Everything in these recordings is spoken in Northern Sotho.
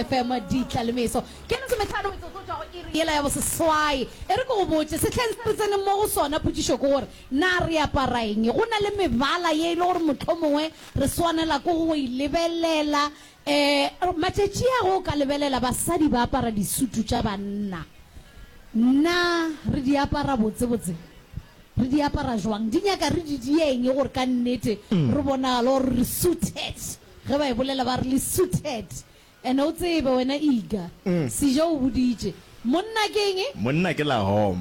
FM ditla le meso. Ke lesometlhano metsotso go tšwa go iri yela ya boseswai. E re ke go botše, sehleng se re tseneng mo go sona potšišo ke gore na re apara eng. Go na le mebala ye e le gore mohlomongwe re swanela ke go e lebelela. Um matšatši a ge o ka lebelela basadi ba apara disutu tša banna, na re di apara botsebotse? Re di apara bjang? Di nyaka re di die eng gore ka nnete re bonagale gore re suited? Ge ba e bolela ba re le suited. Ene o tsebe wena Iga. Sijo o boditše, Monna ke eng? Monna ke la hom.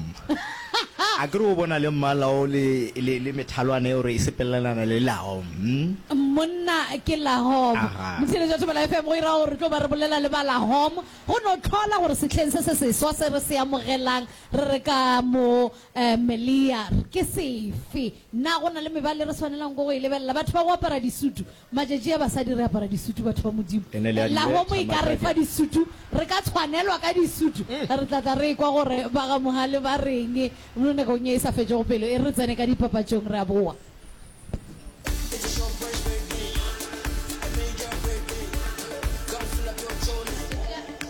A ke re o bona le mmala o le, le, le methalwana yeo re e sepelelana le la hom, hm? Monna ke la hom. Aha. Motheeletši wa Thobela FM o e ra gore re tlo ba re bolela le ba la hom, go no hlola gore sehleng se se seswa se re se amogelang re re ka mo, eh, Meliar, ke sefe. Na go na le mebala e re swanelang go e lebelela? Batho ba go apara disutu. Matšatši a basadi re apara disutu, batho ba Modimo. Ene le a di Lahomo betha e ka re fa matswakeng. disutu, re ka tshwanelwa ka disutu. Re tla tla re ekwa gore ba ga Mohale ba reng mo nakong ye e sa fetšego pelo. E re re tsene ka dipapatšong, re a boa.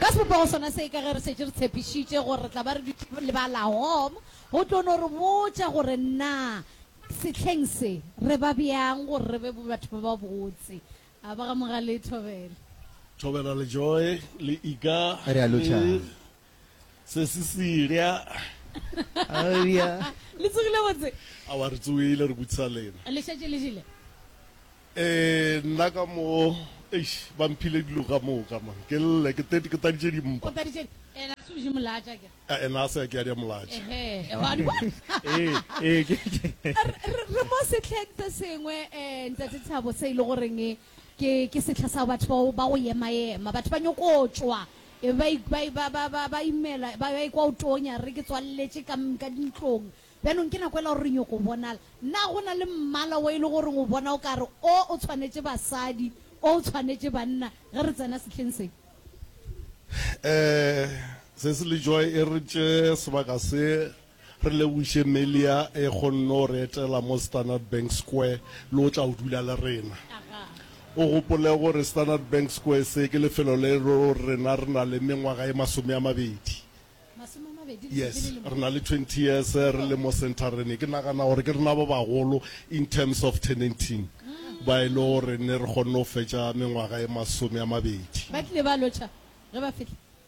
Ka sebopego sona se, ka ge re šetše re tshepišitše gore re tla ba re dutše le ba Lahom, go tlo no re botša gore na sehleng se re ba bjang gore re be batho ba babotse. A ba ga Mogale e thobele. Thobela le Joy le Ika le. Re a lotšhang. se se silya Haleluya. Le tsogile botse? Awa re tsogile re butsa lena. Le šetše le jele? Eh nna ka mo eish ba mphile dilo ka moka man ke lle ke tete ke taditše dimpa. O taditše ena se je molatša ke. Eh ena se ke ya dia molatša. Ehe wa di bona. Eh eh ke. Re mo sehleng se sengwe eh ntate Thabo se ile go reng Ke, ke sehla sa batho ba go, ba go ema-ema. Batho ba nyoko tšwa, e be ba i, ba i, ba, ba, ba, ba imela, ba, ba ekwa go tonya, re ke tswalletše ka, ka dintlong. Bjanong ke nako yela ya gore re nyoko bonala. Na go na le mmala wo e le goreng o bona o ka re o, o tshwanetše basadi, o, o tshwanetše banna, ge re tsena sehleng se? Ee, sesi le Joy e re tše sebaka se. Re lebogiše Melia e kgonno re etela mo Standard Bank Square le o tla o dula le rena. O gopole gore Standard Bank Square se ke lefelo le lo rena re na le mengwaga e masome a mabedi. Yes, re na le 20 years re le mo centerene. Ke nagana gore ke rena ba bagolo in terms of tenanting ba e le gore ne re kgonne go fetša mengwaga e masome a mabedi. Ba tlile ba lotšha ge ba fihla.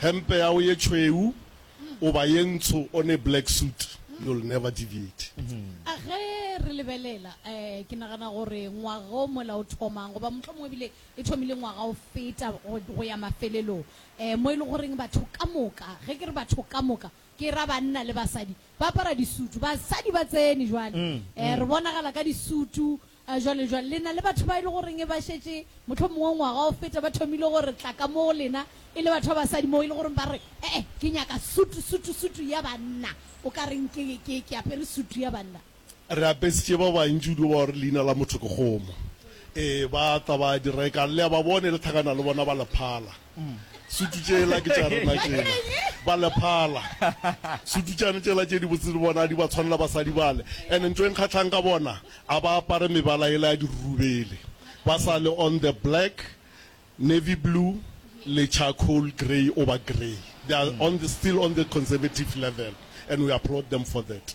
Hempe yago ye tšhweu goba ye ntsho on a black suit, you'll never deviate. A Ge re lebelela, eh, ke nagana gore ngwaga o mola o thomang, goba mohlomongwe ebile e thomile ngwaga o feta go, go ya mafelelong, eh, mo e le goreng batho ka moka, ge ke re batho ka moka, ke ra banna le basadi, ba apara disutu. Basadi ba tsene jwale, eh, re bonagala ka disutu, A Jwale, jwale, le na le batho ba e le goreng e ba šetše mohlomongwe ngwaga o feta ba thomile go re tla ka mo go lena, e le batho ba basadi moo, e le goreng ba re, E-e, ke nyaka sutu, sutu, sutu ya banna. O ka reng ke, ke, ke apere sutu ya banna? Re apesitše ba bantši kudu ba gore leina la motho ke kgomo. Ee, ba tla ba di reka. Le a ba bona, e le thakana le bona ba le phala. Umm sutu tšela ke tša rena tšela ba lephala sutu tšane tšela tše di botse le bona di ba tshwanela basadi bale and ntho e nkgatlhang ka bona a ba apare mebala ela ya dirurubele ba sa le on the black navy blue le charcoal grey oba grey they are on the still on the conservative level and we applaud them for that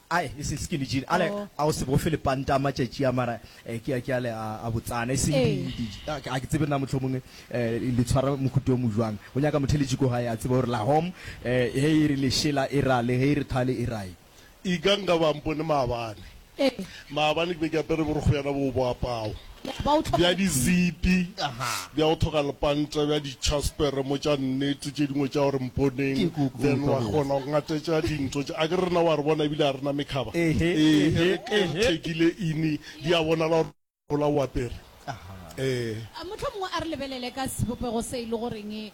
Ae, e seng skinny jean, ale Oh. a o se bofe lepanta a matšatši a, mara eh, ke a, ke ale a, a botsana, e seng di, Ee. di, ah, ga ke tsebe na mohlomong eh, le tshwara mohuta o mo jwang. Go nyaka motheletši ko gae a tseba gore la home eh, ge e re lešela e ra le, ge e re thale e rae. Ikang ka ba mpone maabane. Ee. Maabane ke be ke apere borokgo bjana boo bo apago. bja dizipi, bja go thoga lepanta, bja ditšhaspere mo tša nnete tše dingwe tša gore mponeng, then wa kgona go ngatetša dintho tše. A ke re na wa re bona ebile a re na mekhaba? Ee, e re thekile ini, di a bonala gore gola o apere. Ee. A mohlomongwe a re lebelele ka sebopego se e le goreng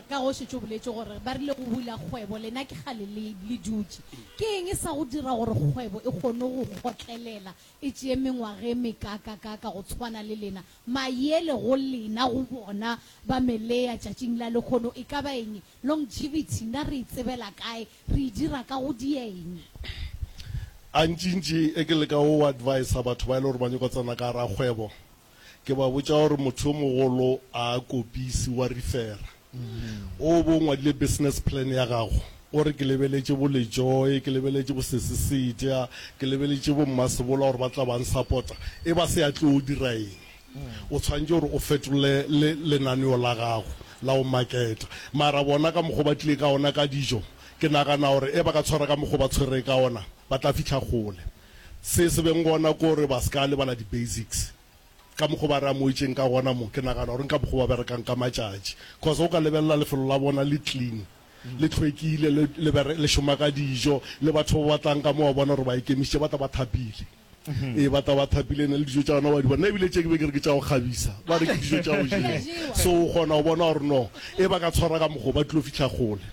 ka ge o šetše o boletše gore ba rile go bula kgwebo, lena ke kgale le dutše. Ke eng sa go dira gore kgwebo e kgone go kgotlelela e tšee mengwaga e mekaakakaaka go tshwana le lena, maele go lena, go bona, ba melea tšatšing la lekgono, e ka ba eng e? Longevity, na re e tsebela kae? Re e dira ka go dia eng? Antšintši e ke leka go adviser batho ba e le gore ba nyoko tsena ka gare ga kgwebo, ke ba botša gore motho yo mogolo a kopisi wa refera o bo o ngwadile business plan ya gago o re ke lebeletše bo lejoe ke lebeletše bo sesisedia ke lebeletše bo mmasebola gore ba tla bang suppota e ba se ya tlo o dira eng o tshwanetse gore o fetole le lenaneo la gago la go maketa mara bona ka mokgwa ba tlile ka ona ka dijo ke nagana gore e ba ka tshwara ka mokgwa ba tshwere ka ona ba tla fitlha gole Se se beng gona ke gore ba se ka lebala di-basics. Ka mokgo ba re amogetšeng ka gona mo, ke nagana gore nka mokgo ba berekang ka matšatši. Cos ge o ka lebelela lefelo la bona le clean, le tlhwekile, le, le, le šoma ka dijo, le batho ba ba tlang ka mo wa bona gore ba ikemišitše, ba tla ba thapile. Ee, ba tla ba thapile, ene le dijo tša bona wa di bona. Ebile tše ke be ke re ke tša go kgabisa, ba re ke dijo tša go jewa. So o kgona go bona gore no ge ba ka tshwara ka mokgo, ba tlilo fihla kgole.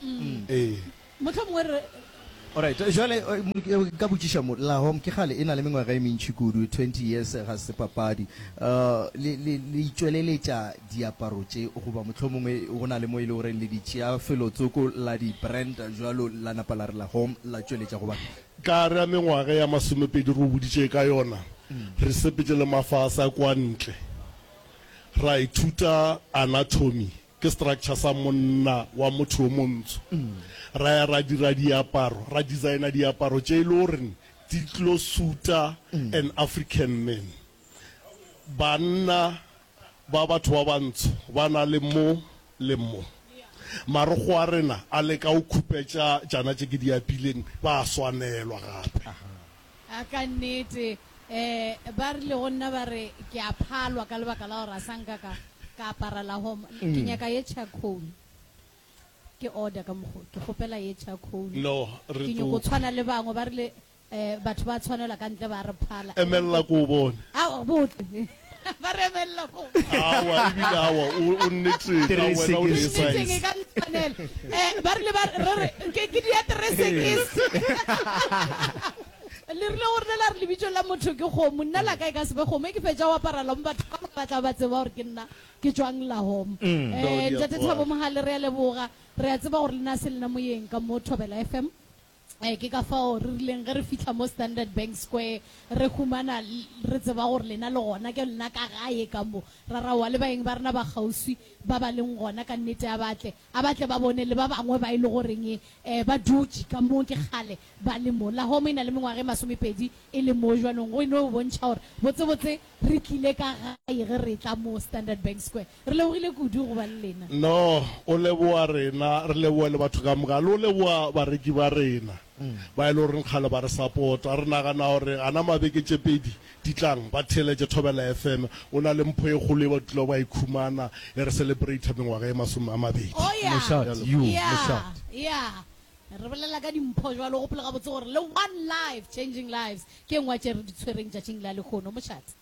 Ee. Mohlomongwe re. Alright, jwale nka botšiša mo, La Home ke kgale e na le mengwaga e mentši kudu, twenty years, ga se papadi. Le, le, le itšweleletša diaparo tše, goba mohlomongwe go na le mo e le gore le di tšea felotsoko la di branda jwalo, la napa la re La Home, la tšweletša go batho. Ka re a mengwaga ya masomepedi re o boditše ka yona, re sepetše le mafase a kwantle, ra ithuta anatomy Ke structure sa monna wa motho yo montsho. Ra ya ra dira diaparo, ra designer diaparo tše e le goreng di tlo suta an African man. Banna ba batho ba bantsho ba na le mo le mo. Marokgo a rena a leka go khupetša tšana tše ke di apileng, ba a swanelwa gape. A Ka nnete, ee, ba rile go nna ba re ke a phalwa ka lebaka la gore a sa nka ka, ka apara la home. Ke nyaka ye charcoal. Ke order ka mokgo, ke kgopela ye charcoal. No, re Ke nyoko tlo. tshwana le bangwe. Ba rile, ee, batho ba tshwanelwa ka ntle ba re phala. Emelela ke o bone. Ao, botle. ba rebelela fo awa ebile awa o o nnetseng ka Three wena o ne seconds. Itseng e size ka ntshwanela. Eh, ba rile ba re re ke ke dia tresekis le rile gore le la re lebitso la motho ke kgomo nna la ka e ka sebe kgomo e ke fetša go apara lom batho ka moka ba tla ba tseba gore ke nna ke tswang la hom Mm. Dodi um ya ntate kwa. thabo mogale re a leboga re a tseba gore le na se lena moyeng ka mo thobela fm Ke ka fao re rileng ge re fihla mo Standard Bank Square, re humana re tseba gore lena le gona. Ke lena ka gae ka mo. Ra ra wa le baeng ba rena ba kgauswi ba ba leng gona. Ka nnete, a ba tle, a ba tle ba bone le ba bangwe ba e le goreng ba dutše ka mo ke kgale ba le mo. Lahome e na le mengwaga e masomepedi e le mo jwanong, go e no bontšha gore botsebotse re tlile ka gae ge re etla mo Standard Bank Square. Re lebogile kudu go ba le lena. No, o leboga rena, re leboge le batho ka moka, le go leboga bareki ba rena ba e le goreng kgale ba re sapota. Re nagana gore gana mabeke tše pedi di tlang, ba theeletše Thobela FM. O na le mpho e kgolo ye ba tlilago ba e khumana ge re celebrata mengwaga e masome a mabedi. Oh, ya, Mošate, yo, ya, mošate. ya. Re bolela ka dimpho jwale, o gopole gabotse gore le One Life, Changing Lives, ke e nngwe ya tše re di tshwereng tšatšing la lehono. Mošate.